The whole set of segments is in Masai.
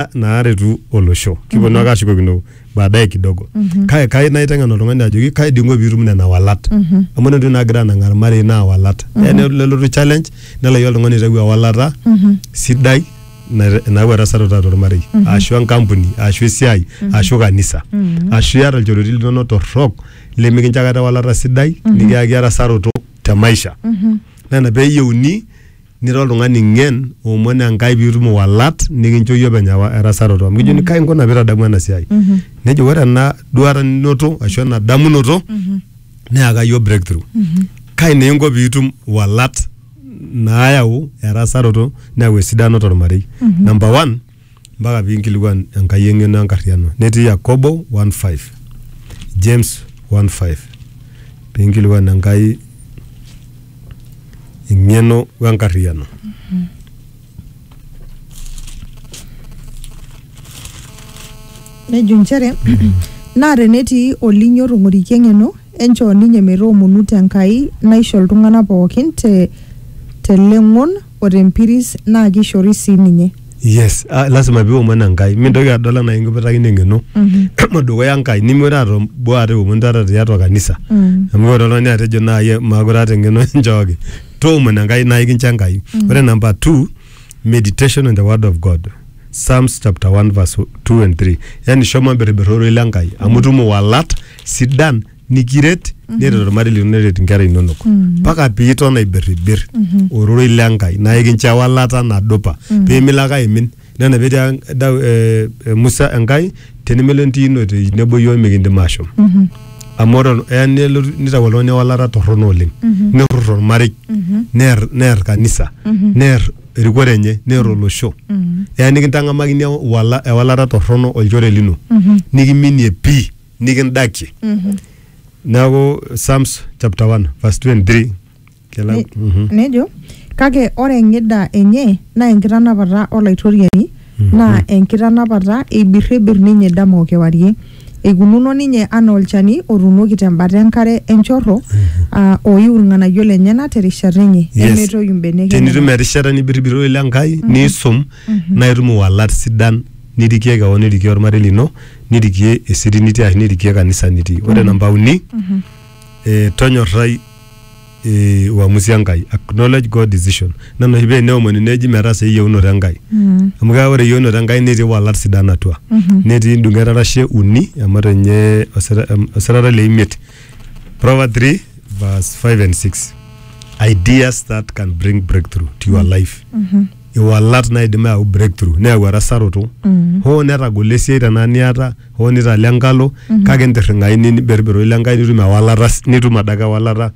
na- naaretu olosho kiponu ake ashukokino baadaye kidogo kake kai naiteng'en oltung'ani ajoki kai dingo piitum nena walat amu ore entoki nagira anang'aa irmarei naa walat Eya nelo- nelotu challenge nelayu oltung'ani aitayu ewalata sidai na- nayau erasarata tormarei ashu enkampuni ashu esiai ashu kanisa ashu iata ilchoreti linono torrok lemikincho akata ewalata sidai nikiyaki erasaroto te maisha nena peyieuni nira oltung'ani ng'en omon enkai piitum iwalat nikincho iyie openy ewa- erasaroto amu kijoni kai inkuna piitadamu ena siai nejo ore ena duata ninoto ashu ena damunoto neyaka iyie breakthrough kai naa inko piitum iwalat naayau erasaroto neyau esidano tormarei number one mpaka pinkilikuan Enkai eng'eno enkarriano. Netii Yakobo one five, James one five, pinkilikuan Enkai eng'eno wenkarriano. nejo inchere naa tenetii olinyo otong'orikia eng'eno enchoo ninye metoomonu te Enkai naisho iltung'anak pookin te teleng'on o tempiris naa keishori sii ninye. yes ah, lazima piomon enkai mintoki adol anaa inkiputakino eng'eno emu dukuya enkai nimure atom boo ate omon taata tiatua kanisa Mm. amu ore oltung'ani atejo naai maakure aata eng'eno enchooki toomon enkai naa ikincho enkai ore namba two meditation on the word of god psalms chapter 1 verse 2 and 3 yani shomo imbirribirr ororei le nkai amu itum iwalat sidan nikiret neret ormarei lino neret inkera inonok mpaka piiton aibirribir ororei le Enkai naa ikincho ewalata nadupa pimilo ake aimin nena petia Dau- eh, eh, Musa Enkai tenimilo entiino te nebo iyiok mikindim ashom amu ore ol- eya nelotu nitau oltung'ani ewalata torrono oleng nerrur ormarei neer neer kanisa neer erikore enye neer olosho eya nikintang'amakini ewala- ewalata torrono olchore lino nikiminie pii nikindakie neaku psalms chapter 1 verse 23 kela Ne- mhm. nejo kake ore eng'ida enye naa enkitanapata olaitoriani naa enkitanapata eibirribir ninye dama o kewarie eikununo ninye anaa olchani otuunoki tembata enkare enchorro aa oiu irng'anayio lenyena terishata enye Yes. nemetoyu mbenek tenitum enyena. erishata nibiribiro ile Enkai niisum naa itum iwalat sidan nirikie kewon nirikie ormarei lino nirikie esiri nitii ashu nirikie kanisa nitii ore namba uni eh, tonyorrai eh, uamusi enkai acknowledge god decision nena oshi paa eneomoni neji metaasa eyieunoto enkai amu keeku ore eyieunoto enkai netii walat sidan atua netii ndung'et arashe uni emato ninye osira- em- osirata le imiet Proverbs 3 verse 5 and 6 ideas that can bring breakthrough to your life iwalat naidim ayau breakthrough neyau erasaroto Mm. hoo netagolo esiai tenaa niata hoo nitala enkalo Mhm. kake intirring'ai ni- niberberoi le Enkai nitum ewalata s- nitum adake ewalata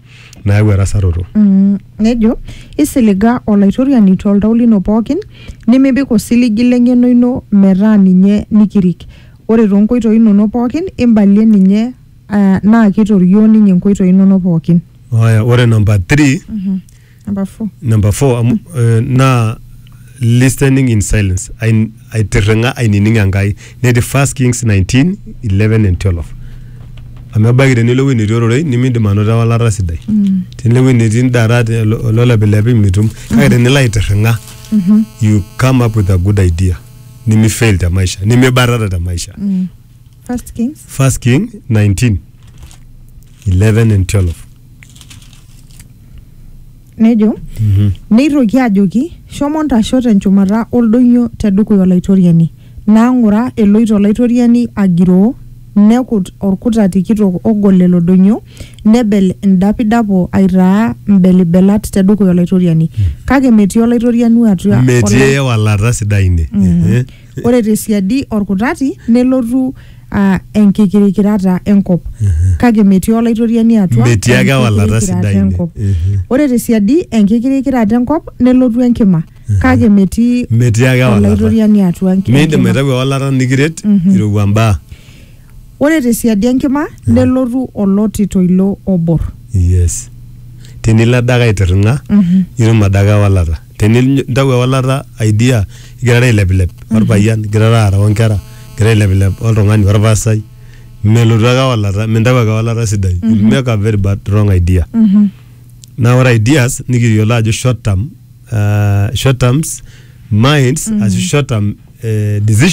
nayau erasaroto Mm, nejo isiliga olaitoriani toltau lino pookin nimipik osiligi leng'eno ino metaa ninye nikirik ore toonkoitoi inonok pookin imbalie ninye ah, naa kitorioo ninye inkoitoi inonok pookin Aya, ore namba 3 number four number four amu eh, naa listening in silence Ain- aitirring'a ainining enkai netii first kings 19 11 and 12 amu ebaiki tenilo ewueji netii ororei nimindim anoto ewalata sidai tenilo ewueji netii indarat olo- ololepilepi mitum kake tenilo aitirring'a you come up with a good idea nimifail te maisha nimibatata te maisha First Kings. First King 19 11 and 12 Nejo, neitoki ajoki, shomo ntasho tenchumata oldoinyo tedukuya olaitoriani. Naa ng'ura eloito olaitoriani agiroo, nekut orkutati kitok ogol lelo doinyo, nebel indapidapo aitaa mbelibelat tedukuya olaitoriani. Kake metii olaitoriani atua metii olai- ewalata sidai ine Ehe. ore te siadi olkutati nelotu aa enkikirikirata enkop kake metii olaitoriani atua Metii ake ewalata enkikirikirata sidai ine. enkop. Mhm. ore te siadi enkikirikirata enkop nelotu enkima kake metii Metii ake ewalata. olaitoriani atua enki- Miindim enkima. aitayu ewalata nikiret irowua mbaa. ore te siadi enkima nelotu oloti toilo obor Yes. Tenilo adake aitirring'a, itum adake ewalata. tenintau ewalata idea igirara ailepilep orpayian igirara aara onkera igirara ailepilep oltung'ani orpasai melotu ake ewalata mintau ake ewalata sidai You'll make a very bad wrong idea naa ore ideas nikiyiolo ajo short term, uh, short terms minds ashu short term eh, decisions